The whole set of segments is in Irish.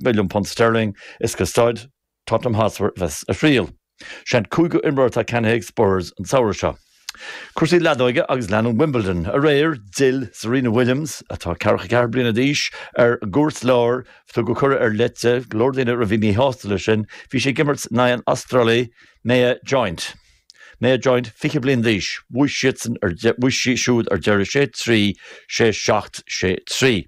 milliún punt sterling is go staid Tottenham Hotspur a bheas a thriall. Sé an cúigiú imreoir atá ceannaithe ag Spurs an samhradh seo. Cúrsaí leadóige agus leanann Wimbledon, aréir, d'fhill Serena Williams, atá 44 bliana d'aois, ar an gcúirt lár. Tugadh cuireadh ar leith di, go leor daoine a bhí míshásta le sin, bhí sí ag imirt in aghaidh an Astrálaigh Maya Joint. Maya Joint, 20 bliain d'aois, bhuaigh siadsan ar, bhuaigh sí siúd ar deireadh sé trí, sé seacht, sé trí.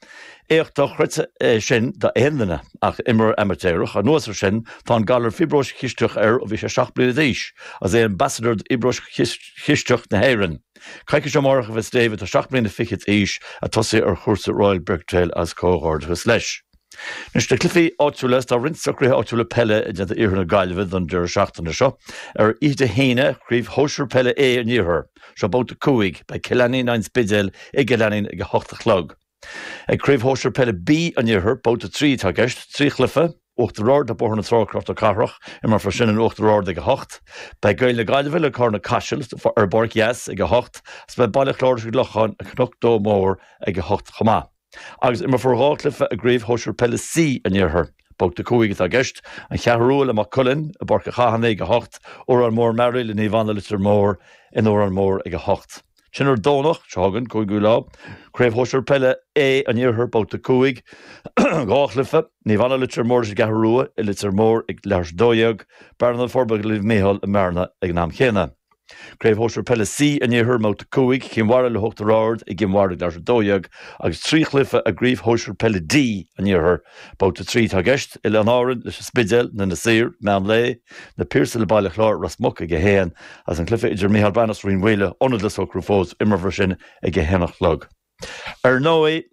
Éacht dochreidte é sin d'aon duine, ach d'imreoir amaitéarach. Anuas ar sin, tá an galar fiobróis chisteach air ó bhí sé seacht mbliana d'aois, agus é ina ambasadóir d'Fhiobróis Chisteach na hÉireann. Coicís ó amárach a bheas David, atá seacht mbliana fichead d'aois, ag tosaí ar chúrsa Royal Birkdale agus comhghairdeachas leis. Anois, na cluichí áitiúla, is tá roinnt socruithe áitiúla peile déanta in iarthar na Gaillimhe don deireadh seachtaine seo. Ar oíche Dé hAoine, Craobh Shóisir Peile A an Iarthair. Seo babhta a cúig. Beidh Cill Ainnín leis an Spidéal i gCill Ainnín ag a hocht a chlog. Ag Craobh Shóisir Peile B an Iarthair, babhta a trí atá i gceist. Trí chluiche, Uachtar Ard le Bóthar na Trá, Cnoc na Cathrach. Imreofar sin in Uachtar Ard ag a hocht. Beidh Gaeil na Gaillimhe le Cárna Caisil ar an bPáirc Theas ag a hocht agus beidh Baile Chláir leis an gClochán i gCnoc Dó Mór ag a hocht chomh maith. Agus imreofar dhá chluiche i gCraobh Shóisir Peile C an Iarthair. Babhta 5 atá i gceist, An Cheathrú Rua le Maigh Cuilinn i bPáirc an Chathánaigh ag 8, Órán Mór-Mearaí le Naomh Anna Leitir Móir in Órán Mór ag 8. Ansin ar an Domhnach seo chugainn, 5ú lá, Craobh Shóisir Peile A an Iarthair, Babhta 5, dhá chluiche, Naomh Anna Leitir Móir leis an gCeathrú Rua i Leitir Móir ag leathuair tar éis a dó dhéag, Bearna-Na Forbacha le Naomh Micheál i mBearna ag an am chéanna. Craobh Shóisir Peile C an Iarthair, Babhta 5, Cinn Mhara le hUachtar Ard i gCinn Mhara ag leathuair tar éis a 12 agus Trí Chluiche i gCraobh Shóisir Peile D an Iarthair, Babhta 3 atá i gceist, Oileáin Árann leis An Spidéal, in Inis Oírr, Meán Lae, Na Piarsaigh le Baile Chláir, Ros Muc ag a haon agus an cluiche idir Micheál Breathnach 's Rinn Mhaoile, ionad le socrú fós, imreofar sin ag a haon a chlog. Ar ndóigh,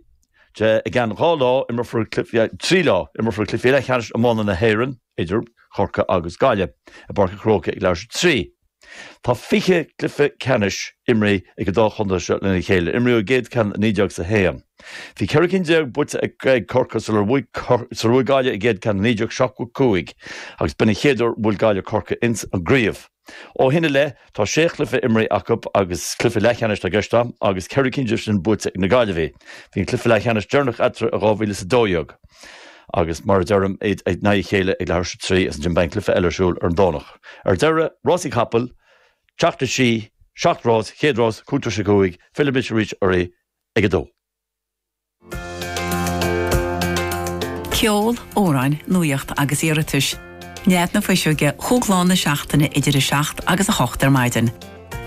i gceann dhá lá, imreofar, trí lá, imreofar cluichí leathcheannais iomána na hÉireann idir Chorcaigh agus Gaillimh i bPáirc an Chrócaigh ag leathuair tar éis a 3. Tá fiche cluiche ceannais imrith ag an dá chontae seo lena chéile. Imríodh an chéad cheann i naoi déag is a haon. Bhí ceithre cinn déag buaite ag Corcaigh sular bhuaigh Gaillimh a gcéad cheann i naoi déag seachtó cúig agus b'in an chéad uair a bhuail Gaillimh Corcaigh ins an gcraobh. Ó shin i leith, tá sé chluiche imeartha acu agus is cluichí leathcheannais atá i gceist agam agus ceithre cinn díobh sin buaite ag na Gaillimhigh. Bhí an cluiche leathcheannais deireanach eatarthu in 2012 agus, mar a deirim, iad in aghaidh a chéile ag leathuair tar éis a trí is ansin, beidh an cluiche eile ar siúl ar an Domhnach. Ar deireadh, rásaí capall, Teach na Sí, seacht rás, chéad rás, cúig tar éis a cúig, fillfimid arís oraibh ag a dó. Ceol, amhráin, nuaíocht agus iarratais. Nead na Fuiseoige chúig lá na seachtaine idir 7 agus 8 ar maidin.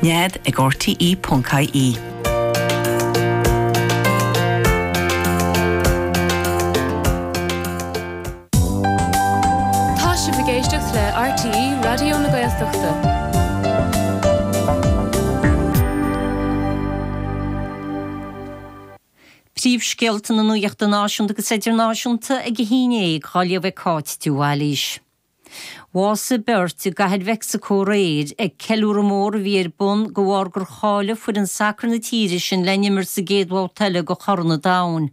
Nead ag RTE.ie. Tá sibh ag éisteacht le RTÉ Raidió na Gaeltachta. Príomhscéalta na Nuachta Náisiúnta agus Idirnáisiúnta ag 11, á léamh ag Cáit de Bhailís. Bhásaigh beirt i gCathair Mheicsicó aréir ag ceiliúradh mór a bhí ar bun de bharr gur cháiligh foireann sacair na tíre sin le n-imirt sa gcéad bhabhta eile de Chorn an Domhain.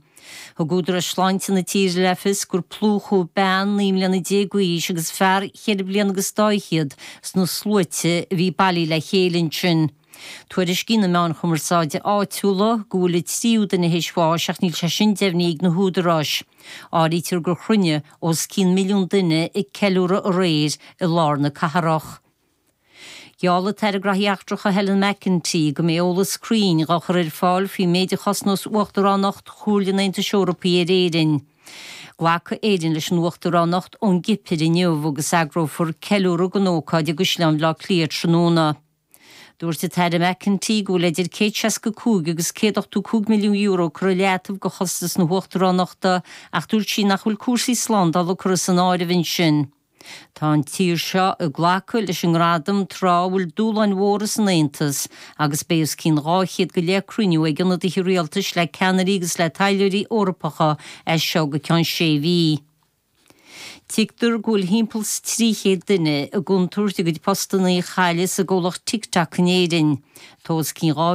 Thug Údaráis Sláinte na tíre le fios gur plúchadh bean naoi mbliana déag d'aois agus fear cheithre bliana agus dá fhichead sna sluaite a bhí bailithe le chéile ansin. Tuairiscíonn na meáin chumarsáide áitiúla go bhfuil an tríú duine théis bháis ach níl sé sin deimhnithe ag na húdaráis. Áirítear gur chruinnigh os cionn milliún duine ag ceiliúradh aréir i lár na cathrach. Gheall an tAire Gnóthaí Eachtracha Helen McEntee go mbeidh eolas cruinn á chur ar fáil faoin méid a chosnós Uachtaránacht Chomhairle an Aontais Eorpaí ar Éirinn. Glacfaidh Éirinn leis an Uachtaránacht ón gCipir inniu agus eagrófar ceiliúradh don ócáid i gCaisleán Bhaile Átha Cliath tráthnóna. Dúirt an tAire McEntee go bhfuil idir €165 agus €185 milliún curtha i leataobh do chostas na hUachtaránachta ach dúirt sí nach bhfuil cúrsaí slándála curtha san áireamh ansin. Tá an tír seo ag glacadh leis an ngradam tráth a bhfuil dúshláin mhóra san Aontas agus beidh os cionn 200 go leith cruinniú ag ionadaithe rialtais le ceannairí agus le taidhleoirí Eorpacha as seo go ceann sé mhí. Tuigtear go bhfuil thimpeall 's trí chéad duine i gcontúirt a gcuid postannaí a chailleadh sa gcomhlacht TikTok in Éirinn. Tá os cionn 2000.